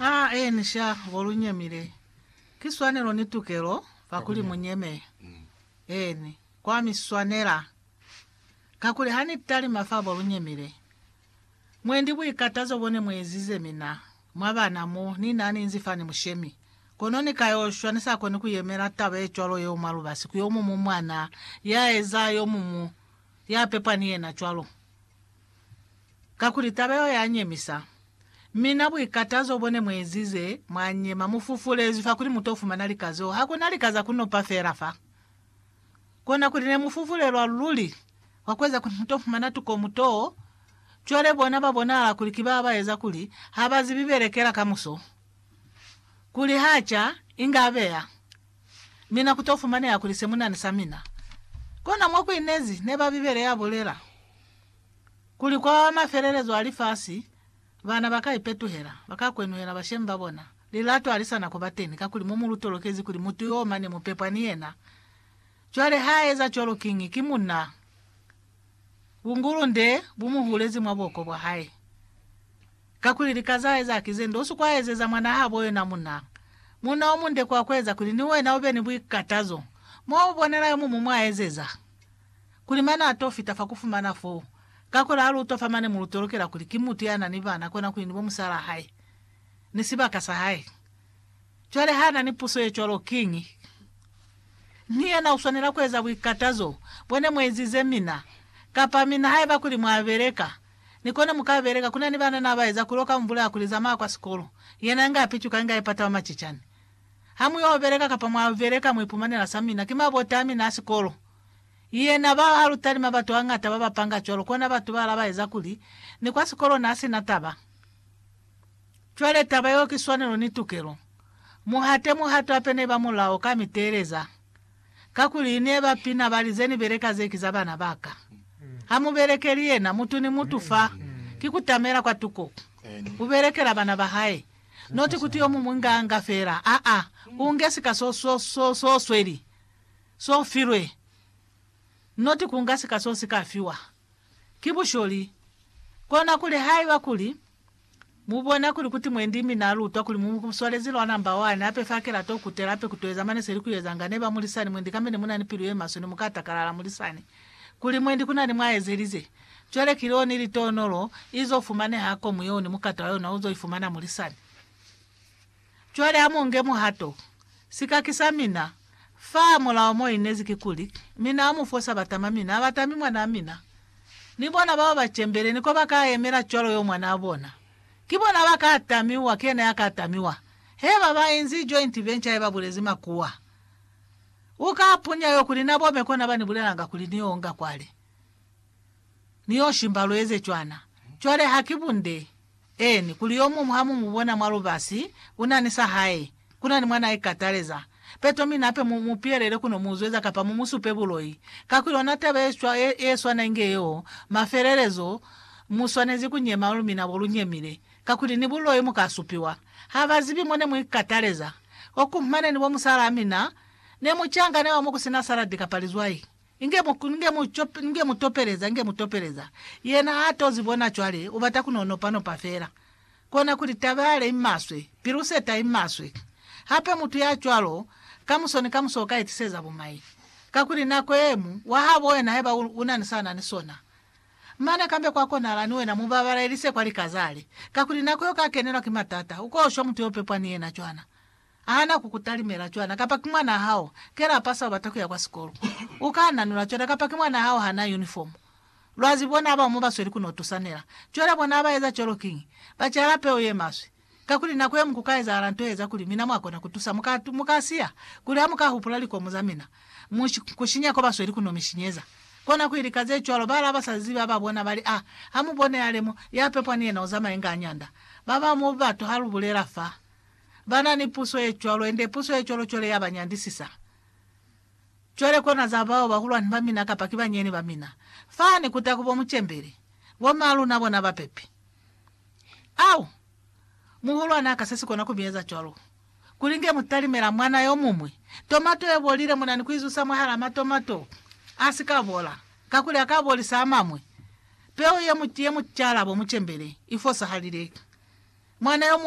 A Enisha bo lu nyemile, ki swanelo ni tukelo fa kuli mu nyeme. Eeni, kwa mi swanela. Kakuli ha ni talima fa bo lu nyemile, mwendi buikatazo bo ne mu ezize mina, mwa bana mo, ni na ni nzi fani mushemi. Kono ni ka yo shwa, ni sa koni ku yemela taba ye cwalo yeo mwa lubasi, ku yo mumu mwana ya eza yo mumu ya pepwa ni yena cwalo. Kakuli taba yeo ya nyemisa. Mi na buikatazo bo ne mu ezize, mwa nyema, mu fufulezwi fa kuli mu to fumana lika zeo. Ha ku na lika za ku nopa fela fa. Kona kuli ne mu fufulelwa luli, kwa ku eza kuli mu to fumana tuko mu too. Cwale bona ba bonahala kuli ki ba ba eza kuli ha ba zibi belekela kamuso. Kuli ha ca, inge a beya. Mina ku to fumaneha kuli se mu na ni sa mina. Kona mo ku inezi, ne ba Bibele ya bulela. Kuli kwa mafelelezo a lifasi, bana ba ka ipetuhela, ba ka kwenuhela bashemi ba bona. Lilato ha li sa na ku ba teni, kakuli mo mu lu tolokezi kuli mutu yo mane mu pepwa ni yena. Cwale ha eza cwalo kiñi? Ki munna. Bungulunde bu mu hulezi mwa buhoko bwa hae. Kakuli lika za eza ki ze nde. U si kwa ezeza mwanaa habo yona munna. Munna o munde kwa ku eza kuli ni wena u be ni buikatazo. Mwa mu bonela yo muñwi mwa ezeza. kuli mane a to fita fa ku fumana foo. Kakuli ha lu utwa fa mane mo lu tolokela kuli ki mutu ya na ni bana kona kuli ni bo musalaa hae, ni sibaka sa hae. Cwale ha na ni puso ye cwalo kiñi? Ni yena u swanela ku eza buikatazo bo ne mu ezize mina. Kapa mina haiba kuli mwa beleka, ni kone mu ka beleka. Ku na ni bana na ba eza kuli oka mu bulaya kuli zamaya kwa sikolo, yena inge a picuka inge a ipata wa macicani. Ha mu yo beleka kapa mwa beleka mu ipumanela sa mina, ki mabota a mina a sikolo. Yena ba a luta ni mabatu a ñata ba ba panga cwalo, kona batu ba la ba eza kuli, ni kwa sikolo na si na taba. Cwale taba yeo ki swanelo ni tukelo. Mu hate muhato hape ne ba mulao ka mi teeleza. Kakuli ne ba pina ba li, Ze ni beleka ze ki za bana ba ka. Ha mu belekeli yena, mutu ni mutu fa, ki ku tamela kwa tuko. U belekela bana ba hae. Noti kuti yo muñwi nga anga fela. Aa, u nge sika so, so, so, so sweli. So filwe. Not ku nga sika so si ka fiwa. Ki busholi. Kona kuli haiba kuli, mu bona kuli kuti mwendi mi na lutwa kuli mu mu swalezi lwa namba wani, hape fa kela to kutela hape ku to eza mane se li ku ezanga, ne ba mulisani mwendi kambe ne mu na ni pilu ye maswe, ne mu ka takalala mulisani kuli mwendi ku na ni mwa ezelize. Cwale ki leo ni litonolo, i zo fumaneha komu yeo ni mukato wa yona u zo ifumana mulisani. Cwale amonge muhato. Sikaki sa mina, fa mulao mo inezi kikuli, mina amufo sa batama mina abatami mwanaa mina. Ni bona bao ba cembele ni ko ba ka yemela cwalo yo mwanaa bona. Ki bona ba ka tamiwa, ki yena ya ka tamiwa. He ba ba inzi joint venture ye ba bulezi makuwa. U ka punya yo kuli na bome kona ba ni bulelanga kuli ni yo nga kwale. Ni yo shimba lu eze cwana. Cwale ha ki bunde. Eeni, kuli yomuñwi ha mu mu bona mwa lubasi, u na ni sa hae, ku na ni mwa n'a ikataleza, peto mi nape mu mu pihelele ku no mu zweza kapa mu mu supe buloi. Kakuli ona taba ye cwa ye, ye swana inge yeo, mafelelezo, mu swanezi ku nyema lu mina bo lu nyemile, kakuli ni buloi mu ka supiwa. Ha ba zibi mo ne mu ikataleza. Oku, mane ni bo musalaa mina, ne mu cangane wa mo ku si na saladi kapa lizwai. Inge mu, inge mu, inge mu topeleza, inge mu topeleza. Yena ha to zi bona cwale, u bata ku no nopa nopa fela. Kona kuli, taba yale i maswe, pilu seta i maswe. Hape mutu ya cwalo, kamuso ni kamuso uka itiseza bumai. Kakuli nako yemu, wa habo wena haiba u, u na ni sa na ni sona. Mane kambe kwa konahala ni wena mu babalelise kwa lika zale. Kakuli nako yo ka kenelwa ki matata, uko shwa mutu yo pepwa ni yena cwana. Hana ku ku talimela cwana kapa ki mwanaa hao ke la pasa ubata kuya kwa sikolo. U ka nanula cwana kapa ki mwanaa hao ha na unifomu. Lwa zibi bona abao mo ba sweli ku no tusanela. Cwale bona ha ba eza cwalo kiñi? Ba cala peu ye maswe. Kakuli nako ye mu ku ka ezahala nto ye eza kuli mina mwa kona ku tusa, mu ka, mu ka siya, kuli ha mu ka hupula likomu za mina, mu ku sinya ko ba sweli ku no mi sinyeza. Kona kuli lika ze cwalo ba la ba sa zibi ha ba bona ba li, Ah, ha mu bone ale mo, ya pepwa ni yena u zamaye nga a nyanda. Ba bao mo batu ha lu bulela fa. ba na ni puso ye cwalo, yende puso ye cwalo cwale ya ba nyandisisa. Cwale kona za bao bahulwani ba mina kapa ki banyeeni ba mina, fani ku taku bo mucembeli, bo maa luna bona ba pepi. Au! Muhulwani aka se si kona ku mi eza cwalo. Kuli nge mu talimela mwana yo muñwi, tomato ye bolile mu na ni ku i zusa mwahalaa matomato a si ka bola, kakuli a ka bolisa a mañwi. Peu ye mu, ye mu cala bo mucembeli, i fosahalile. Mwana yo muñwi.